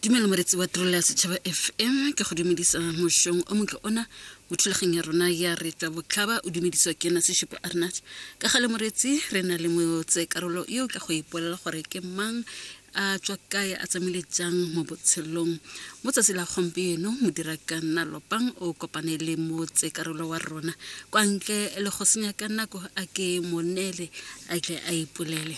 dumelo moretsi wa tirelo ya setšhaba fm ke go dumedisa mošong o motle ona mo thulageng ya rona ya retsa botlhaba o dumediswa ke ena sešupo arnat ka ga le moretsi re na le motse karolo yo o tla go ipolela gore ke mang a tswa kae a tsamaile jang mo botshelong mo tsatsi la gompieno modira ka nna lopang o kopane le motse karolo wa rona kwa ntle le go senya ka nako a ke monele a tle a ipolele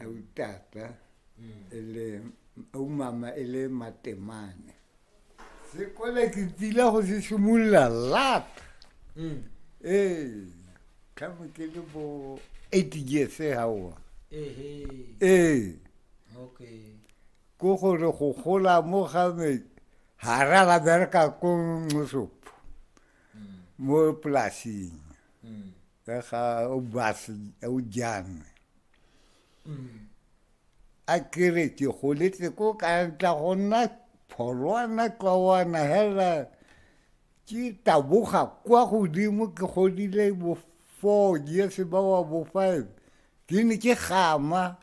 autata e le aumama e le matemane sekole ke tsile go se simolola lat mm. ee tlhamo ke le bo eight years gaoa ee ko gore go gola mo game ga ra ba bereka ko nosopho mm. mo polasing mm. ka ga o base o jang a kere ke goletse ko ka tla go nna pholwana kawana hela ke taboga kwa godimo ke godile bo four years ba wa bo five ke ne ke gama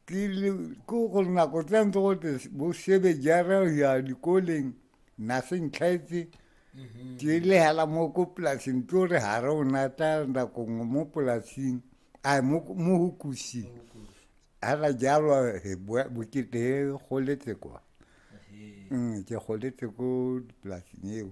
ke ko gore nako tsa ntse gote bo sebe jara ya dikoleng na swi ntlhaitsi mhm. ti lehela mo ko polasing tlo re ga re o natla nakong mo polasing a mo go kusing ga ra jalo bokete goletse kwa mm, ke goletse ko polasing eo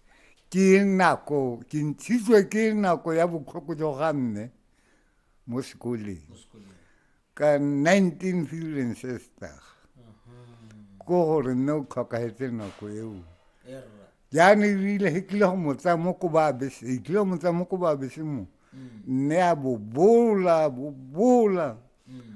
ke nako ke ntshitswe ke nako ya botlhoko jo ga mme mo sekoleng ka 19 feeling sister ko gore mme o tlhokagetse nako eo jaane ebile e tlile go motsa mo ko ba bese e tlile go motsa mo ko ba bese mo mm. mme a bobola bobola mm.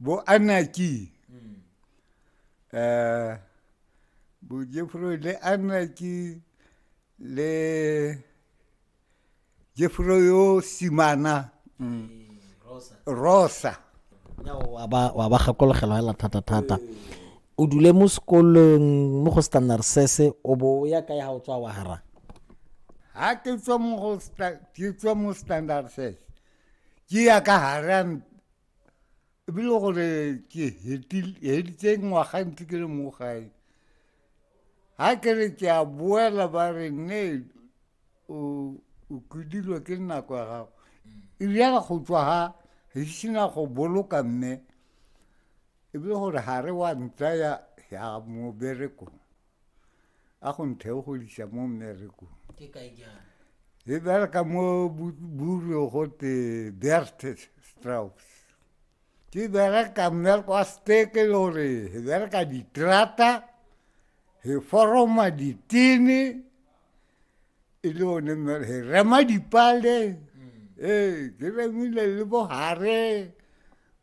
Bo Anaki. Mm. Eh, bo Jefro le Anaki le Jefro yo Simana. Mm. Rosa. Rosa. wa ba wa ba gakologelwa hela thata thata o dule mo sekolong mo go standard sese o bo o ya kae ga o tswa wa hara ha ke tswa mo go sta- ke tswa mo standard sese ke ya ka harang ebile gore ke heditse ngwaga ntse ke le mo gae ga ke re ke a boela ba re ne o kudilwe ke nako ya gago ebjale go tswa ga ge ke sena go boloka mme ebile gore ga re wa ntsaya ya moberekong a go ntheogolisa mo mmerekong ke kae jang e bereka mo buro go te bertes straus ke bereka mmereko wa steke le gore e bereka diterata e foroma ditene e le one e rema dipale mm. ee ke remile le bohare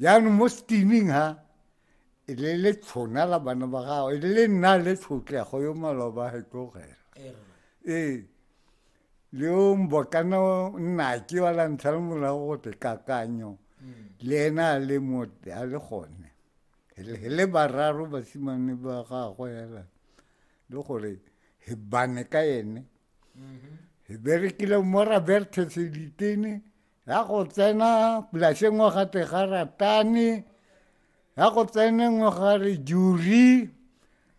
jaanong mo steaming ha e le le tshona la bana ba gago e le nna le tshotlego yo maloba he tlogela ee le o mbokana nna ke wa la ntlha le morago go te kakanyo mm. le ena a le mo a le gone he le bararo basimane ba gagwe hela le gore he bane ka ene mm-hmm. he berekile mo raberthe seditene ya go tsena polase ngwe ga te ga ratane ya go tsene ngwe ga re juri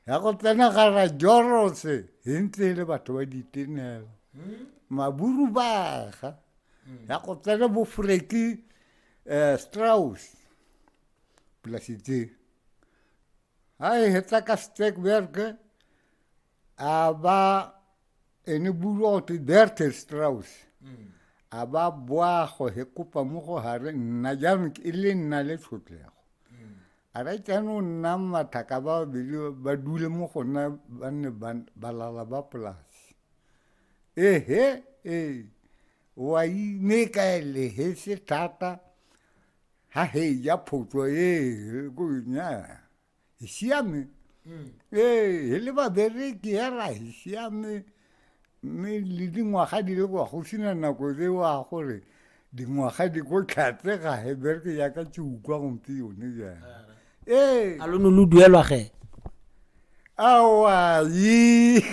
ya go tsena ga ra jorose e ntse e le batho ba ditenela hmm? maburu baga hmm. ya go tsena bofreki um eh, straus polase tse a e hetsa ka stekberge a ba ene buru o te derte straus mm. a ba boago he kopa mo go hare nna jaanong e le nna le tshotlego mm. a re jaanong nna mathaka ba babedi ba dule mo go nna ba nne balala ba polase ehe ee wa ine ka ele he se thata ha he ja photso ee ko nya Isiami. Mm. Ee, he le babereki ya ra isiami mme le dingwaga di le kwa go sena nako tse wa gore dingwaga di ko tlhatse ga he bereke yaka ke utlwa gompe yone jang ee a lo ne lo duelwa ge awayi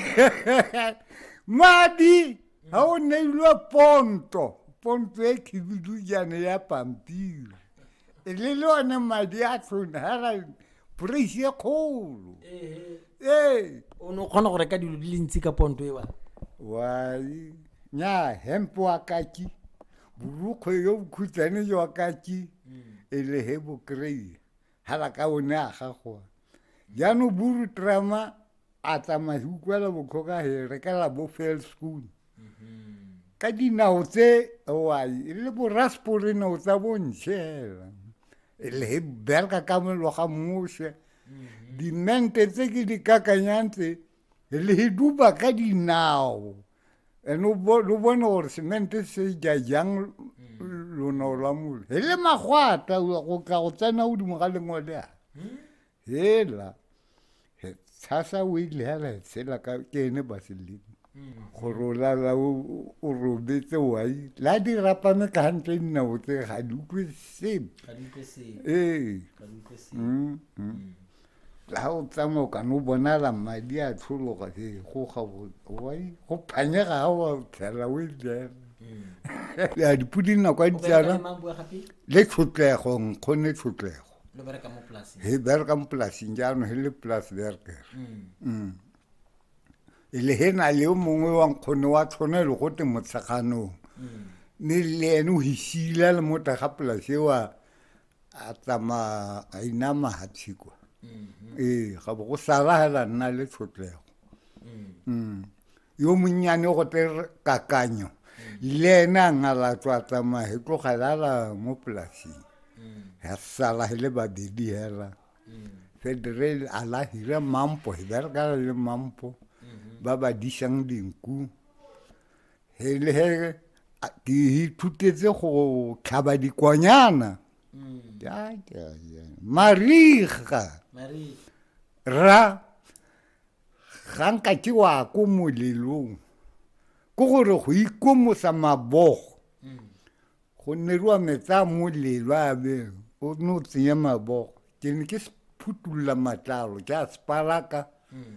madi ga o neilwe ponto ponto e khibidujane ya pampiri e le le one madi a tlhone ga ra praise e kgolo ee o ne o kgona go reka dilo di le ntsi ka ponto e wa wai nya hempe wa kaki borukgwe yo bokhutshwane jwa kaki e le he bokry ha ba ka o ne a gagoa jaanong buru trama a tsamaya se utlwela botlhoka he rekela bo fail school mm-hmm. ka dinao tse owai e le boraspore nao tsa bontšhe hela e le he bereka ka meloga mose mm-hmm. dimente tse ke di kakanyang tse le duba ka dinao and o bone gore semente se ja jang mm. lono lwa mole e le magwata go tla go tsena godimo ga lengwele a mm. hela tshasa o ile hela e tshela ka ke ene baseleng mm. gore o lala o robetse wai la di rapame ka gantle dinao tse ga di utlwe sepe ee ga o tsamaya o kana o bonala madi a tlhologa he go ga wai go phanyega ga wa tlhela o ejela ya dipodi nako a ditsala le tlhotlego nkgone tlhotlego he bereka mo polasing jaanong he le polas berker mm. mm. e le he na le yo mongwe wa nkgone wa tlhona e le go te motsheganong mm. mme le ene o hisile le mota ga polase wa a tsamaya a inama hatshe kwa mm-hmm. ee ga bo go sala hela nna le tshotlego mm. mm. yo monnyane go te kakanyo mm. le ene a ngalatswa a tsamaya he tlogelela mo polasing ya sala he le babedi hela federal a la hira mampo he berekala le mampo mm-hmm. ba ba disang dinku ke ithutetse go tlhaba dikwanyana mm. mariga ra ga nka ke wa ko molelong ko gore go ikomosa mabogo mm. go neriwa metsa molelo a be o ne o tsenya mabogo ke ne ke phutolola matlalo ke a sepalaka mm.